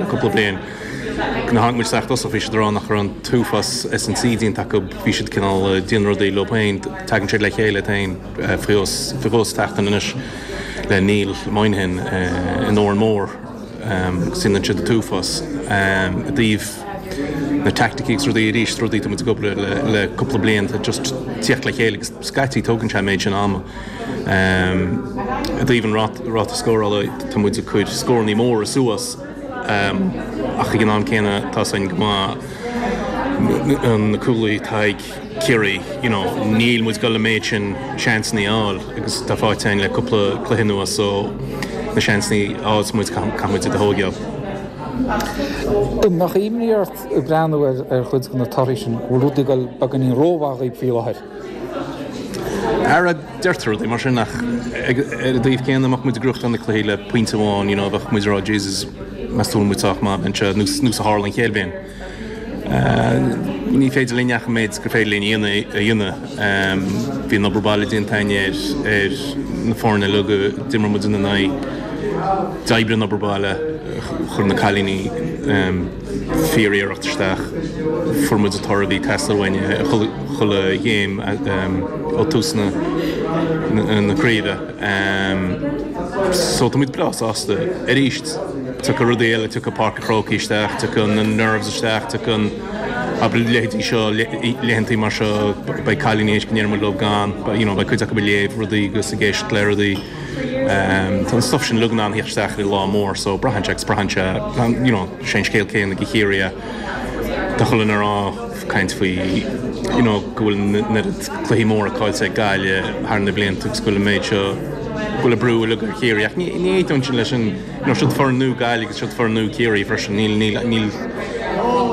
cúpla bliain. Nuair a tháinig muid isteach i dtosach bhí siad ag rá nach raibh an t-uafás S&C déanta acu, bhí siad cineál ag déanamh rudaí leo féin, tagann siad le chéile iad féin faoi dhó sa tseachtain anois le Neil Moynihan in Órán Mór agus déanann siad an t-uafás. I dtaobh na teaicticí agus rudaí, arís rudaí atá muid ag obair ar le cúpla bliain, just tíocht le chéile agus scaití tógann sé an méid sin ama. I dtaobh an ráta scórála, tá muid ag cur scórannaí móra suas ach ag an am céanna tá siad go maith na cúlaithe atá ag Ciarraí, you know, níl muid ag dul an méid sin seansannaí a fháil agus atá faighte againn le cúpla cluiche anuas so na seansannaí a fhaigheas muid, caithfidh muid iad a thóigeáil. An mbeadh imní ort ag breathnú ar chuid de na torthaí sin, bhfuil rudaí ag dul beagáinín rómhaith dhaoibh faoi láthair? Ara, deirtear rudaí mar sin, ach ar an taobh céanna, dá mbeadh muid ag gnóthachtáil na cluichí le pointe amháin, you know, bheadh muid ag rá Jesus, meas tú an bhfuil muid sách maith a bheith anseo, nós a tharla an chéad bhliain? Ní féidir linn ach an méid gur féidir linn a dhéanamh a dhéanamh. Bhí an obair baile déanta againn ar ar na foirne uilig a d'imir muid ina n-aghaidh, d'oibrigh an obair baile, chuir na cailíní, fíor-iarracht isteach. Fuair muid an toradh a bhí ag teastáil uainn chuile chéim ó tús na craoibhe so tá muid breá sásta. Arís, tiocfaidh rudaí eile, tiocfaidh Páirc an Chrócaigh isteach, tiocfaidh na nerves isteach, tiocfaidh you know, a leithéidí seo, laethantaí mar seo, beidh cailíní, théis go ndéarfaidh muid leo gan, you know, beidh cuid acu ag léamh rudaí agus ag éisteacht le rudaí. Tá an stuif sin uilig in ann a thíocht isteach le lá mór so braitheann sé agus braitheann sé, you know, sé an scéal céanna do Chiarraí, tá chuile dhuine ag rá, caint faoi, you know, go bhfuil an oiread cluichí móra caillte ag Gaillimh thar na blianta agus go bhfuil an méid seo, go bhfuil an brú uilig ar Chiarraí ach ní aontaímse leis sin, you know, siod foireann nua Gaillimh agus siod foireann nua Ciarraí freisin, níl, níl, níl,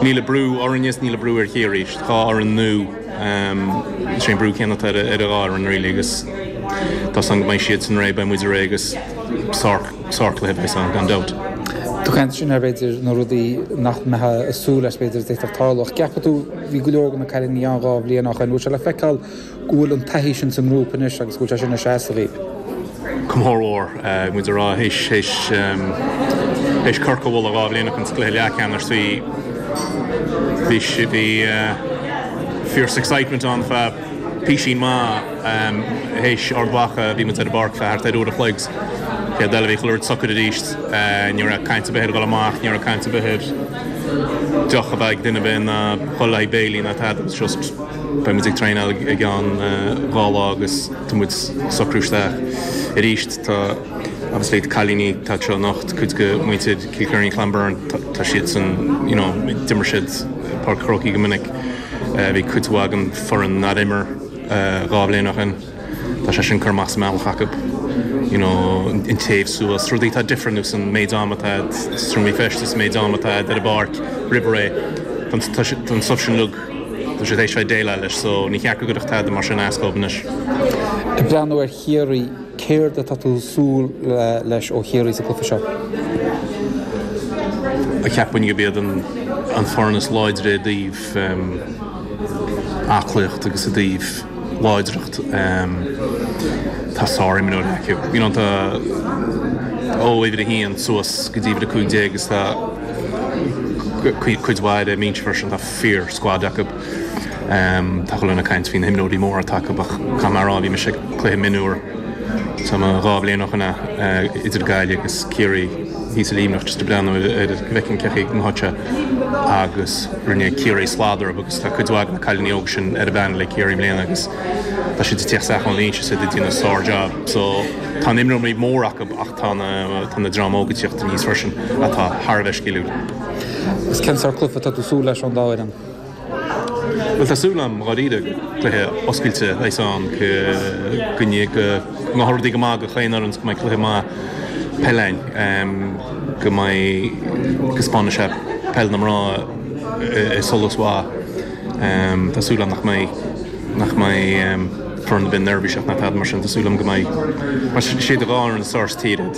níl an brú orainne is níl an brú ar Chiarraí, siod dhá fhoireann nua. Is é an brú céanna atá ar a dhá fhoireann really agus tá a fhios againn go mbeidh siadsan réidh, beidh muid réidh agus sár cluiche a bheas ann gan dabht. Tú ag caint ansin ar b'fhéidir na rudaí nach mbeifeá ag súil leis b'fhéidir a d'fhéadfadh tarlú ach an gceapann tú, bhí go leor de na cailíní ann dhá bhliain ó shin, an bhfuil sé le feiceáil go bhfuil an taithí sin sa ngrúpa anois agus go bhfuil sé sin ag seasamh? Go mór mór, muid ag rá, théis Corcaigh a bhualadh dhá bhliain ó shin sa gcluiche leathcheannais, bhí, bhí, bhí fierce excitement ann, feadh písín maith. Théis Ard Mhacha, bhí muid ar an bpáirc feadh thart ar uair a chloig, chéad rud eile, bhí chuile rud socair arís. Ní raibh caint ar bith ar dhul amach, ní raibh caint ar bith ar deoch a bheith ag duine ar bith ná dhul le haghaidh béilí ná tada, it was just, beidh muid ag traenáil i gceann dhá lá agus, Tá muid socraithe isteach arís. Tá obviously cailíní atá anseo anocht, cuid de muintir Kilkerrin Clonberne. Tá siad san you know d'imir siad Páirc an Chrócaigh go minic. Bhí cuid mhaith den foireann nár imir dhá bhliain ó shin. Tá sé sin cur amach as an mbealach acu. You know an téamh suas, rudaí atá difriúil you know an méid am atá agat sa seomra feistis, an méid am atá agat ar an bpáirc roimh ré. Tá an stuif sin Tá siad théis bheith ag déileáil leis so ní ceart go gcuirfeadh tada mar sin as dóibh anois. Ag breathnú ar Chiarraí, céard atá tú ag súil leis ó Chiarraí sa chluiche seo? Cheapfainn gurb iad an foireann is láidre i dtaobh aclaíocht agus i dtaobh láidreacht. Tá sár-imreoirí acu. You know tá ó uimhir a haon suas go dtí uimhir a cúig déag agus tá cuid mhaith ar a mbinse freisin. fíor-squad acu. Tá chuile dhuine ag caint faoi na himreoirí móra atá acu ach tá mé ag rá bhí mise ag cluiche mionúir is dóigh dhá bhliain ó shin a idir Gaillimh agus Ciarraí bhí sa Luimneach just ag breathnú ar an bhfeicfinn cén chaoi a raibh siad agus rinne Ciarraí slad orthu agus tá cuid mhaith de na cailíní óga sin ar an bpeanel ag Ciarraí i mbliana agus tá siad ag teacht isteach anois is iad ag déanamh sár job so tá na himreoirí móra acu ach tá na tá na dream óga ag teacht aníos freisin atá thar a bheith sciliúil. Agus cén sórt cluiche atá tú ag súil leis ón dá fhoireann? Bhuel, tá súil agam dháiríre gur cluiche oscailte a bheas ann, go ngabhfaidh rudaí go maith do chaon fhoireann, go mbeidh cluiche maith peile ann, go mbeidh go spáinfidh sé peil na mná i solas mhaith. Tá súil agam nach mbeidh, nach mbeidh foireann a bheith neirbhíseach ná tada mar sin. Tá súil agam go mbeidh, mar is iad an dhá fhoireann is fearr sa tír iad.